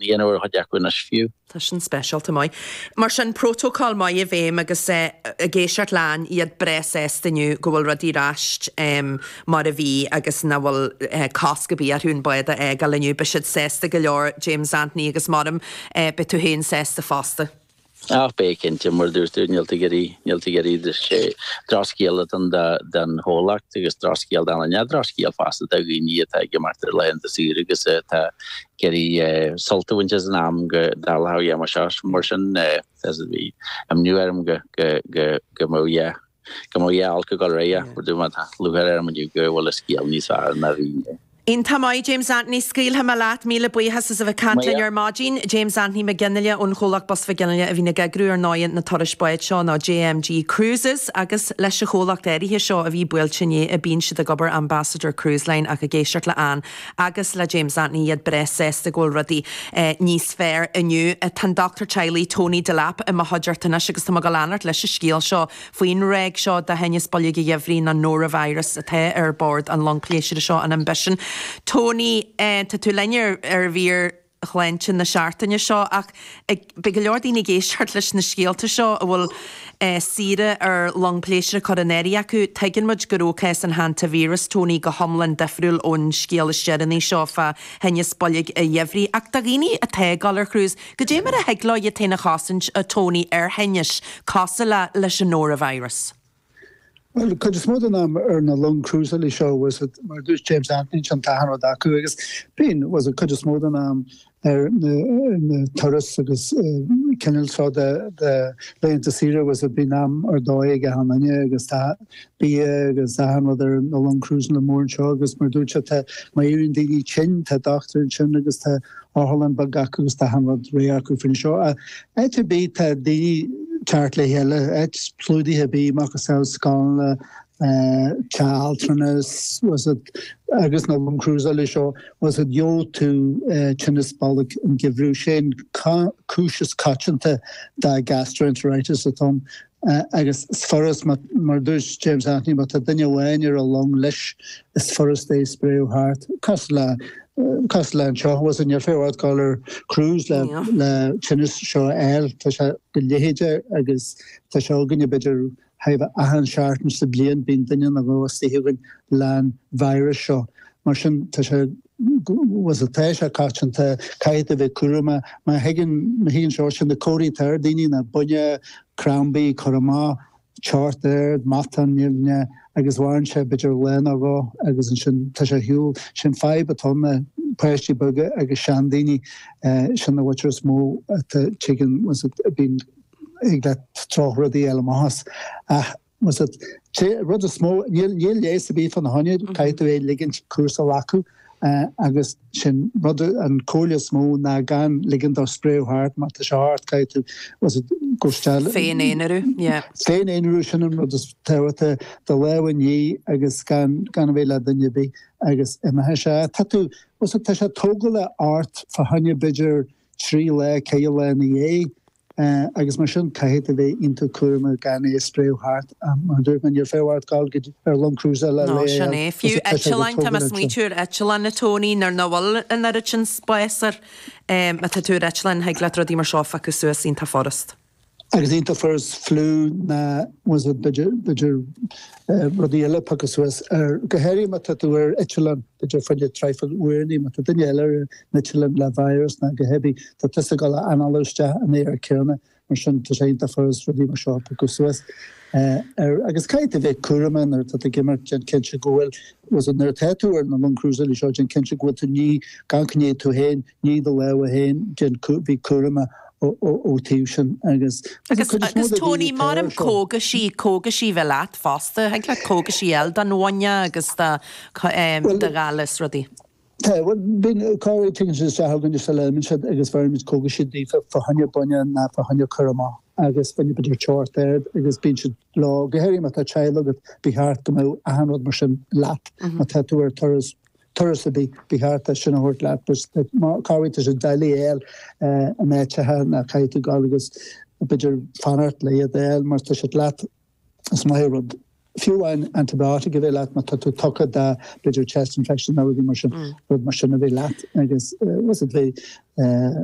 Líon uair chuid acmhainnis fiú. Tá sin speisialta maith. Mar sin, prótacal maith i bhfeidhm agus ag éisteacht le Ann iad breá sásta inniu go bhfuil rudaí ar ais mar a bhí agus nach bhfuil cosc a bhí orthu an bád a fhágáil inniu. Beidh siad sásta go leor, James Anthony, agus maram, beidh tú féin sásta fosta. Ach beidh, cinnte, mar a dúirt tú, níl tú ag iarraidh, níl tú ag iarraidh de, sé drochscéal atá ann don chomhlacht agus drochscéal dúinne, drochscéal fosta do dhaoine atá ag imeacht ar laethanta saoire agus atá ag iarraidh sult a bhaint as an am go dá lá dhéanamh seo mar sin as a bhí imní orm go go go go mó yeah go mbeadh a fháil go gairid aige. Ach tá lúcháir orm inniu go bhfuil an scéal níos fearr ná a bhí inné. Iontach maith James Anthony, scaoilfidh mé leat, míle buíochas as a bheith ag caint linn ar maidin. James Anthony McGinley ón Chomhlacht Bus McGinley a bhíonn ag eagrú ar ndóigh na turais báid seo nó JMG Cruises agus leis an chomhlacht áirithe seo a bhí buailte inné a bhíonn siad ag obair Ambassador Cruise Line ach ag éisteacht le Ann agus le James Anthony iad breá sásta go bhfuil rudaí níos fearr inniu. Tá an dochtúir teaghlaigh Tony Delap i mo chuideachta anois agus tá mé ag dul a leanacht leis an scéal seo faoin ráig seo de thinneas boilg an gheimhridh nó Norovirus atá ar bord an long pléisiúra seo an Ambition. Tony, tá tú linn ar ar mhír. shláinte na seachtaine seo ach beidh go leor daoine ag éisteacht leis na scéalta seo a bhfuil saoire ar long pléisiúra curtha in áirithe acu. Tuigeann muid go raibh cás an Hantavirus, Tony, go hiomlán difriúil ón scéal is deireanaí seo fá thinneas boilg an gheimhridh ach do dhaoine atá ag dul ar cruise, goidé mar a thig leo iad féin a chosaint, a Tony, ar thinnis cosúil leis an Norovirus? Bhuel, cuid is mó den am ar na long cruiseála seo, tá's agat, mar a dúirt James Anthony, ansin tá achan rud acu, agus bíonn, tá's agat, cuid is mó den am ar na turas agus cineál seo de laethanta saoire, tá's agat, bíonn am ar dóigh ag achan duine agus bia agus tá achan rud ar na long cruiseála móra seo agus mar a dúirt sé, tá, má éiríonn daoine tinn, tá dochtúir ansin agus tá otharlann bheag acu agus tá achan rud réidh acu fá choinne seo. Áit ar bith tá daoine ag teacht le chéile, áit clúdaithe ar bith, macasamhail scoileanna, teach altranais, tá's agat agus na long cruiseála seo, tá's agat gheobh tú tinneas boilg an gheimhridh, sé'n cúis is coitianta de gastroenteritis atá ann. agus is furast, mar a dúirt James Anthony, má tá duine amháin ar an long leis, is furast é a spréadh thart, cosúil le, cosúil le anseo, tá's agat níl feidhm ort dul ar cruise le, le tinneas seo a fháil, tá sé go leitheadach agus tá sé againne b'fhéidir chóir a bheith achan seachtain sa bhliain, bíonn duine nó dhó istigh againn leis an víreas seo Mar sin, tá sé tá's agat tá sé coitianta caithfidh tú a bheith cúramach má thigeann má thigeann sé sin na comharthaí atá ar daoine ná buinneach crampaí cur amach teocht ard matáin nimhneach agus maireann sé b'fhéidir lá ná dhó agus ansin tá sé ar shiúl. Sin fadhb atá ann ná páistí beaga agus seandaoine sin an bhuairt is mó atá tigeann tá's agat bíonn thig le drochrudaí eile amach as ach Tá's agat an rud is mó, níl leigheas ar bith fána choinne, caithfidh tú é a ligint cúrsa a ghlacadh agus sin rud, an comhairle is mó ná gan ligint dó spréadh thart, má tá sé ort caithfidh tú, tá's agat cóisteáil, féin-aonrú, yeah. Féin-aonrú, sin an rud is tábhachtaí, do lámha a ní agus gan gan a bheith le duine ar bith agus imeoidh sé. Tá tú, tá's agat tá sé tógálach ort fá choinne b'fhéidir trí lá, ceithre lá ina dhiaidh, agus mar sin caithfidh tú bheith iontach cúramach gan é a spréadh thart. Mar a dúirt mé, níor fiú ort dul go dtí ar long crúsála Nó sin léamh é. Fiú os a choinne go eitleáin, tá mé ag smaoitiú ar eitleáin, a Tony, nuair nach bhfuil an oiread sin spáis air. Má tá tú ar eitleán, thig leat rudaí mar seo a phiocadh suas iontach furast. Agus iontach furast fliú ná tá's agat b'fhéidir b'fhéidir rudaí eile a phiocadh suas air go háirithe má tá tú ar eitleán, b'fhéidir fá choinne traidhfil uaireannaí má tá duine eile ar an eitleán le virus ná go háirithe tá tusa ag dul a análú isteach an aer céanna. Mar sin, tá sé iontach furast rudaí mar seo a phiocadh suas air agus caithfidh tú bheith cúramach nuair atá tú ag imeacht, déan cinnte go bhfuil, tá's agat, nuair atá tú ar na longa crúsála seo, déan cinnte go bhfuil tú ní gan gnéith tú féin, nigh do lámha féin, déan cúr, bhí cúramach ó taobh sin agus Agus, cuid is mó agus de daoine Tony, atá ar mairim seo. cógaisí, cógaisí a bheith leat fosta, thig leat cógaisí a fháil don bhuinneach agus do, do ghalar is rudaí. Tá, bhuel, bíonn go háirithe tig siad chugainne is eile a fhaighimid siad agus bheirimid cógais daofa, fá choinne buinneach ná fá choinne cur amach agus fá choinne b'fhéidir teocht ard agus bíonn siad leo. Go háirithe má tá teaghlach agat, ba cheart go mbeadh achan rud mar sin leat má tá tú ar turas, turas ar bith, ba cheart é sin a thabhairt leat agus má, go háirithe, tá sé doiligh a fháil in áiteacha ná caithfidh tú gabháil agus b'fhéidir fanacht le iad a fháil mar tá siad leat. Is maith rud, fiú amháin antibiotic a bheith leat má tá tú tugtha do b'fhéidir chest infection nó rudaí mar sin, rud mar sin a bheith leat agus tá's agat bheith